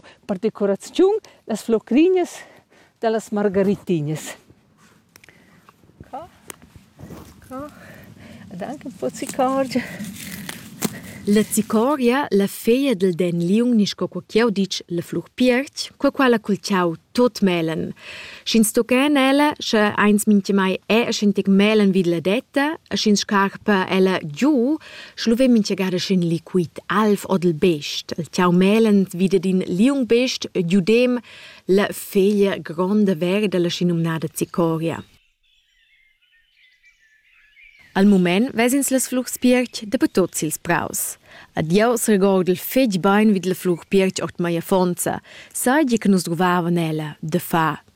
per decoraziun las flocrinhas da las margarittinas. Ca. Ca. Ed anche un po' zicargia. La zicoria, la feia del den liung nis co quchiau ditg la flur piertg, co quella cul ciau tot melen. Sch'ins toquen ella, sche eins mintgemai è, e sch'in tec melen vid la detta, e sch'ins scarpa ella giu, Schlu ve minchegada sc'ün liquid alv o del best. Il tiau melend vida d'in liung best giudem la feglia gronda verda, la schinumnada cicoria. Al mument ves'ins las flurs pierch daper tots ils praus. A Dieus regord il fetg bain vid la flur pierch ord mei affonza, sai gie che nus druvavan ella, de fa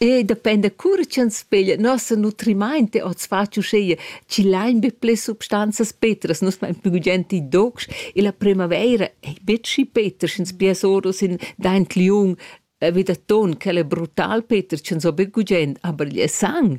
E dependa cura ch'ins peglia nossa nutrimainta oz fatg uschea chi lain be ples substanzas petras, nus main plü gugent i docs e la primavaira ei betg schi peter, sch'ins piars oros in daint liung vi da ton, quel è brutal, Peter, ch'ins ho be gugent, aber il è sang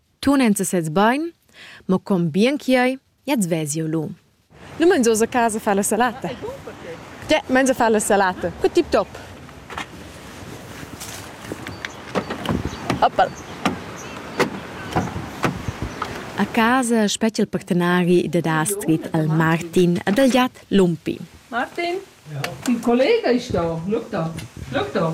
tunenza sez bain, ma con bien che ei, jetzt ves jeu lu. Nu mangias a casa fa la salata? Te mangia fa la salata. Cu tip top. Oppal. A casa spetga il partenari da Astrid al Martin ad el giat Lumpi. Martin, il collega è stato. Look da. Look da.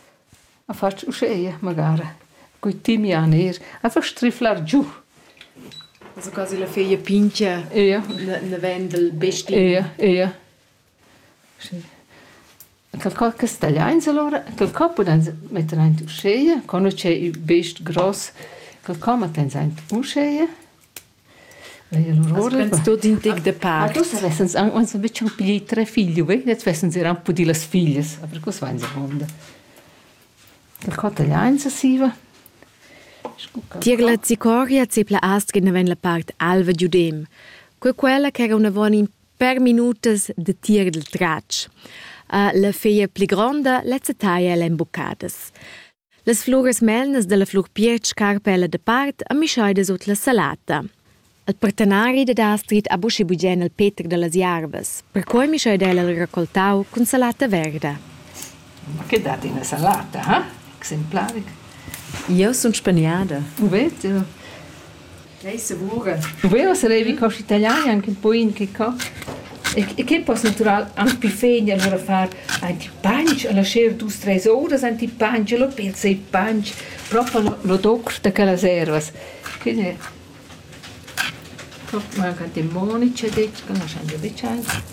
A fatsch uscheia magara cun timian eir, a fa striflar giù. Also quasi la feia pingia. Ia. Na, na ven dal bestin. Ia, ia. Schi. Qualcosa cas tagliains alura, qualcosa pudans metter aint uscheia, co nu c'è il best gross, qualcosa mattans aint uscheia. Vens tot in tec de part. Ah, dus vessens aunc uns betg pli tre figli, vei, jetzt vessens er anche pudi las figlias, aber cos vain sa vonda. Der Kotaglianza siva. Tiegla zicoria zepla astgena ven la part alva giudem. Que quella che era una von in per minutas de tir del tratsch. Uh, la feia pli gronda, lezza taia l'embucadas. Las fluras melnas dalla flur piertg carpella depart a mischeidas ord la salata. Il partenari dad Astrid ha buca bugen il Peter dallas jarvas. Perquei mischeida el il raccoltau cun salata verda. Ma che dat ina salata, ha? Exemplaric. Jeu sun spaniada. U vete? Ei segura. Vero sarevi co italian anche un po' in che co. E che poss natural anche pi fein allora far anti panch alla scher dus treis horas anti panch lo pilza e panch proprio lo, lo doc da quellas ervas. Quindi manca demonici detto che lasciamo becciare.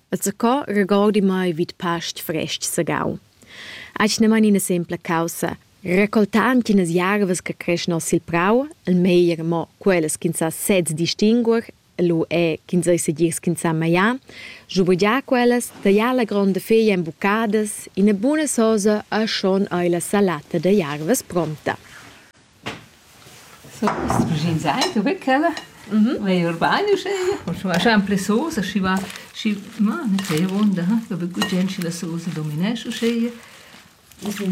E zacò regordi mai vid past frest sagau. Eis ne man ina sempla caussa, recoltand chinas jarvas che creschan sil prau, il meglier mo quellas ch'ins sa sez distinguer, lu è ch'ins ei segir ch'ins sa magliar, schubergiar quellas, tagliar la gronda feglia en buccadas, ina buna sosa e schon ei la salata da jarvas pronta. So, i's preschaintaint vair ch'ella vaja eir bain uschea, scu va sempre sosa, schi va, schi, ma nu sai avuonda, da be gugent schi la sosa dominesch uschea.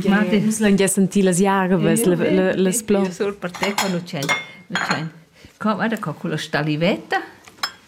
Ma di. Nus l'han già sentì las jarvas, le, le, las plo. Io sur per te qua nu c'è, nu c'è. Co, guarda co, culla stalivetta.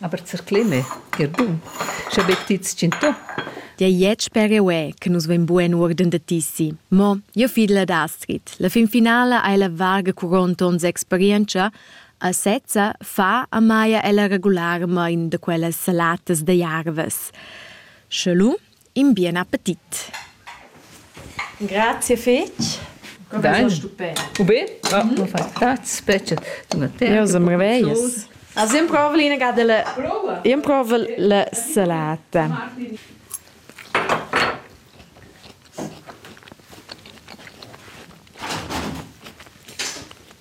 Aber zercleme, ger bun, sche be ti tschintò. Dei jet sper euè che nus vein bugen uorden da tissi. Mo jeu fid la d'Astrid. La fin finala ei la varga quaranta onns experientscha a sezza fa a Maja ella regularmain da quellas salatas da jarvas. Sche lu in bien appetit. Grazie fetg. Dai. Ube? Ah, mm. Grazie, specie. Ja, se meraviglias. Also improvo l'ina delle improvo la salata.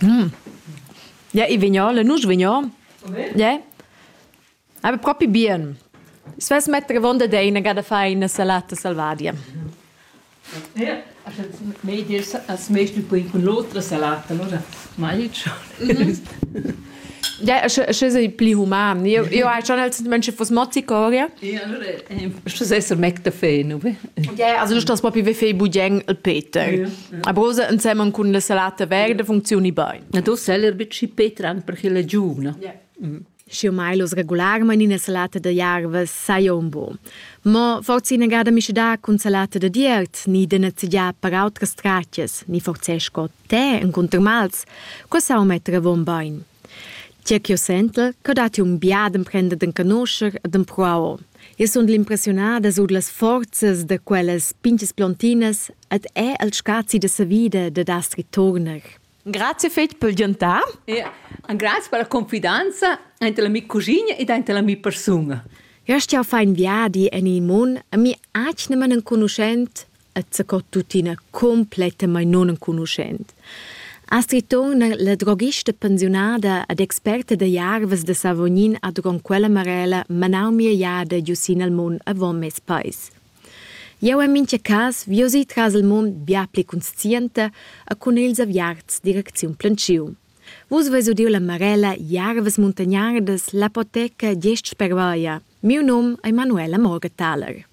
Mm. Ja, ich vignole, nus vignon. Ja. Aber proprio bien. Es vas mettere vonda deina cada faina salata salvadia. Ja, also mehr dir als mehr du bring con l'otra salata, allora mai ciò. Ja, sche sei pli human. Io, io hai schon als Menschen was Mozzicoria. Ja, allora, ich esser Mac da Fe, no? Ja, also nicht, dass Papi wie Fei Budjeng il Peter. Ja, ja. A Brose insieme con la salata verde funzioni bene. Na, du selber bici Peter anche per chile giù, no? Ja. Mm. Și eu mai los regularment ina salata de jarve sai un bo. Ma forse ina gada mi da cun salata de diert, ni de nezzeggia per autras stratias, ni forse scot Te encunter mals, co sau metter avon bein. Tge ch'io sentel, che datti un biad emprender d'encanoscher e d'empruar. Io sun l'impressionada sur las forzas da quellas pinches plontinas et è al scazi de sa vida de das ritorner. Grazie fetg per giantar. E grazie per la confidenza ante la mi cugina ed ante la mi persona. Io stia fein viadi en il mun e mi acne man enconuschent et sco tuttina complettamain nunenconuschent. Astrid Thon, la droghista pensiunada ed experta da jarvas da Savognin a Dron quella Marella manau mia jada giu sin al mund avon mes pais. Jau en mintga cas vi si tras il mund bia pli conscienta e cun ils aviarts direcziun planciu. Vus veis udiu la Marella Jarvas muntagnardas, l'apoteca Gest spervaia. Miu num è Manuela Morgenthaler.